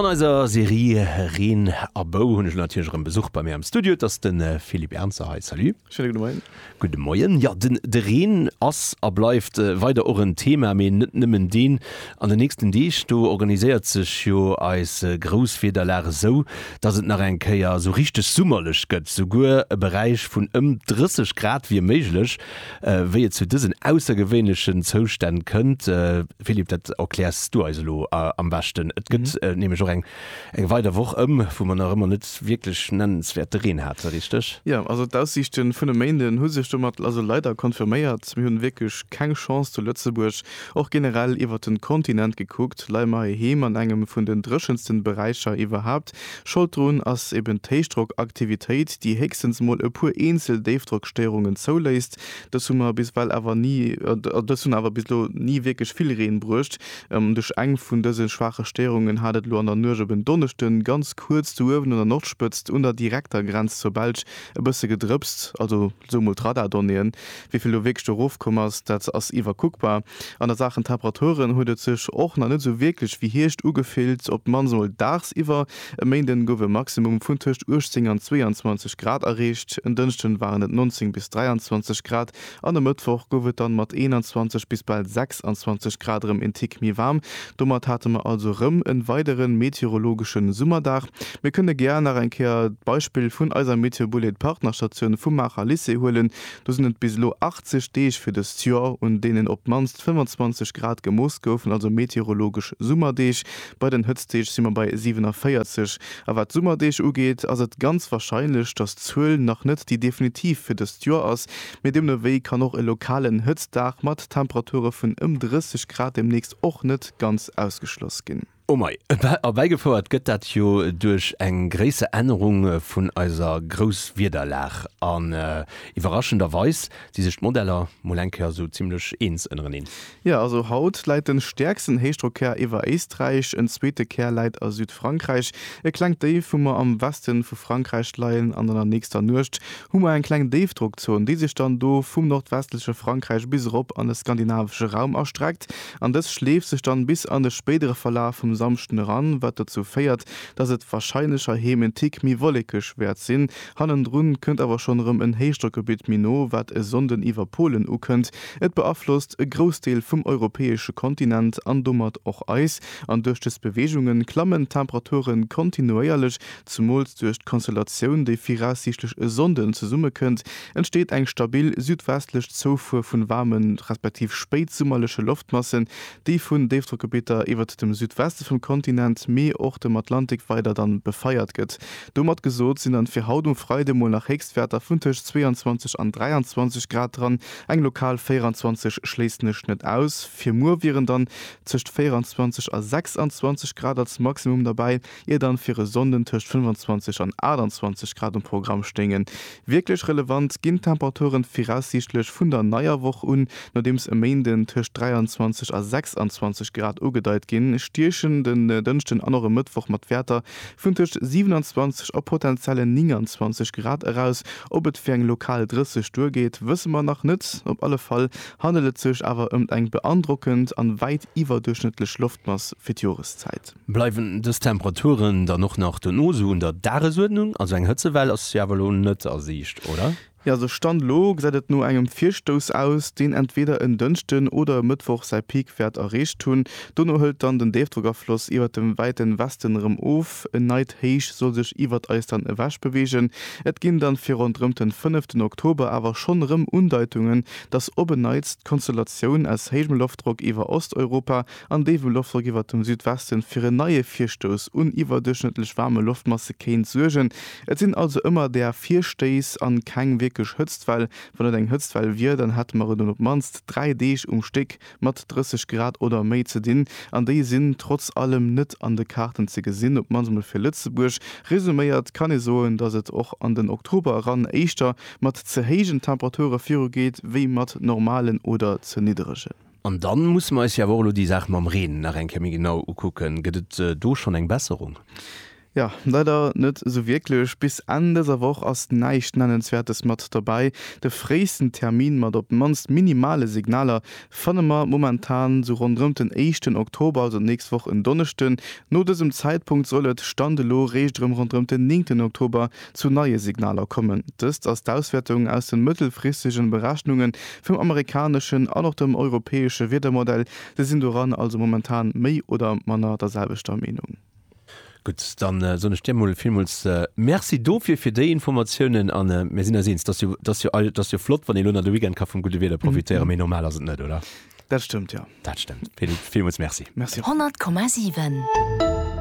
An eiser Serie Reen a Bou hunn ech natierlech erëm Besuch bei mir am Studio. Et ass de Philippe Ernzer hei. Salut. Schéine gudde Moien. Gudde Moien. Jo, den, de Reen ass a bleift weider och en Thema, mee net nëmmen deen. An den nächsten Deeg, do organiséiert sech jo eis Grousswiederlag esou, dass et nach eng Kéier esou richteg summerlech gëtt. Souguer e Beräich vun ëm 30 Grad wier méiglech. Wéi et zu dësen aussergewéinlechen Zoustänn kënnt, Philippe, dat erkläers s du eis elo am beschten. Et gëtt nämlech och eng weider Woch ëm, wou mer nach ëmmer net wierklech nennenswäerte Reen hate, richteg? Jo, also d'Aussiichte vun e Méinden hu sech domat also leider confirméiert. Mir hunn wierklech keng Chance zu Lëtzebuerg. Och generell iwwert den Kontinent gekuckt leie mer heiheem an engem vun den dréchensten Beräicher iwwerhaapt. Schold drun ass eben d'Héichdrockaktivitéit, déi héchstens mol e puer eenzel Déifdrockstéierungen zouléisst. Dës hunn awer bis ewell awer ni, oder dës hunn awer bis elo ni wierklech vill Reen bruecht. Duerch eng vun dëse schwaache Stéierungen hat et elo an der Nuecht op en Donneschde ganz kuerz do uewen un der Nordspëtzt un der direkter Grenz zur Belsch e bësse gedrëpst. Also sou emol d'Radardonnéeën. Wéi vill elo wierklech do erof komm ass, dat ass iwwerkuckbar. An a Saachen Temperaturen huet et sech och nach net sou wierklech wéi Hierscht ugefillt, op d'mannst emol dagsiwwer. E Méinden gouf e Maximum vun tëscht 18 an 22 Grad erreecht, en Dënschden waren et 19 bis 23 Grad an e Mëttwoch gouf et dann mat 21 bis bal 26 Grad erëm een Tick méi waarm. Domat hate mer also erëm en weideren meteorologeschen Summerdag. Mir kënne gär nach eng Kéier d'Beispill vun eiser Meteobullet Partnerstatioun vum Maacher Lycée huelen. Do sinn et bis elo 80 Deeg fir dëst Joer un deenen op d'mannst 25 Grad gemooss goufen, also meteorologesch Summerdeeg. Bei den Hëtztdeeg si mer bei 47, a wat d'Summerdeeg ugeet, ass et ganz warscheinlech, datt d'Zuel nach net déi definitiv fir dëst Joer ass, mee deemnowéi kann och e lokalen Hëtztdag mat Temperature vun ëm 30 Grad deemnächst och net ganz ausgeschloss ginn. Oh mei. Erbäigefouert gëtt dat jo duerch eng gréisser Ännerung vun eiser Grousswiederlag, an iwwerraschenderweis si sech d'Modeller mol eng Kéier esou zimmlech eens ënnereneen. Jo, also haut läit den stäerksten Héichdrockkär iwwer Éisträich, en zweete Kär läit a Südfrankräich, e klengt Déif hu mer am Westen vu Frankräich leien an an der nächster Nuecht hu mer eng kleng Déifdrockzon, déi sech dann do vum nordwestleche Frankräich bis erop an de skandinavesche Raum erstreckt an dës schleeft sech dann bis an de spéidere Verlaf vum Samschden eran, wat dozou féiert, dass et wahrscheinlecherheem en Tick méi wollekeg wäert sinn. Hannendrun kënnt awer schonn erëm en Héichdrockgebitt méi no, wat e Sonnden iwwer Polen ukënnt. Et beaflosst e Groussdeel vum europäesche Kontinent an domat och eis, an duerch dës Beweegunge klammen d'Temperature kontinuéierlech. Zemools duerch d'Konstellatioun, déi viraussiichtlech e Sonnden zesummekënnt, entsteet eng stabil südwestlech Zoufuer vun waarme respektiv spéitsummerleche Loftmassen, déi vun Déifdrockgebitter iwwert dem Südweste vum Kontinent, mee och dem Atlantik weider dann befeiert gëtt. Domat gesot, sinn dann fir haut um Freide mol nach Héchstwäerter vun tëscht 22 an 23 Grad dran, eng lokal 24 schléissen ech net aus. Fir muer wieren dann tëscht 24 a 26 Grad als Maximum derbäi, ier dann fir e Sonnden tëscht 25 an 28 Grad um Programm stéingen. Wierklech relevant ginn d'Temperaturen viraussiichtlech vun der neier Woch un, nodeems e Méinden tëscht 23 a 26 Grad ugedeit ginn, stiechen den Dënschden an och e Mëttwoch mat Wäerter Vun tëscht 27 a potentiellen 29 Grad eraus. Ob et fir eng lokal 30 duergeet, wësse mer nach net. Op alle Fall handelt et sech awer ëmt eng beandrockend an wäit iwwerduerchschnëttlech Loftmass fir d'Joreszäit. Bleiwen dës Temperaturen dann och nach dono sou un der Dagesuerdnung? Also eng Hëtzewell ass jo awer elo net a Siicht, oder? Jo, sou Stand elo gesäit et no engem Virstouss aus, deen entweeder en Dënschden oder e Mëttwoch säi Peak wäert erreecht hunn. Dono hëlt dann den Déifdrockafloss iwwert dem wäiten Westen erëm of. En neit Héich soll sech iwwert eis dann ewech beweegen. Et ginn dann fir ronderëmt den fënneften Oktober awer schonn erëm Undeitungen, dass op en Neits d'Konstellatioun aus héijem Loftdrock iwwer Osteuropa an déi wou Loftdrock iwwert dem Südwesten fir en neie Virstouss un iwwerduerchschnëttlech waarme Loftmasse kéint suergen. Et sinn also ëmmer där Virstéiss an keng wierklech Hëtztwell. Wann et eng Hëtztwell wier, dann hätte mer et un op d'mannst 3 Deeg um Stéck mat 30 Grad oder méi ze dinn, an déi sinn trotz allem net an de Kaarten ze gesinn, op d'mannst mol fir Lëtzebuerg. Resuméiert kann ee soen, dass et och an den Oktober eran éischter mat ze héijen Temperature virugeet wéi mat normalen oder ze niddregen. An dann musse mer eis jo awer och elo déi Saach mam Reen nach eng Kéier méi genau ukucken. Gëtt et do schonn eng Besserung? Jo, leider net esou wierklech. Bis Enn dëser Woch ass näischt Nennenswäertes mat dobäi. De fréisten Termin mat op d'mannst minimale Signaler fanne mer momentan esou ronderëmt den éischten Oktober, also d'nächst Woch en Donneschden. No dësem Zäitpunkt soll et, Stand elo, réischt erëm ronderëmt den néngten Oktober zu neie Signaler kommen. Dëst ass d'Auswäertung aus de mëttelfristegen Berechnunge vum amerikaneschen an och dem europäesche Wiedermodell. Déi sinn doran also momentan méi oder manner der selwechter Meenung. Gutt, dann soen ech dir emol villmools Merci dofir, fir déi Informatiounen. A mir sinn eis eens, dass jo, dass jo all, dass jo flott, wann ee lo nach de Weekend ka vum gudde Wieder profitéieren, mee normal ass et net, oder? Dat stëmmt, jo. Dat stëmmt. Villmools Merci. Merci och. 100,7.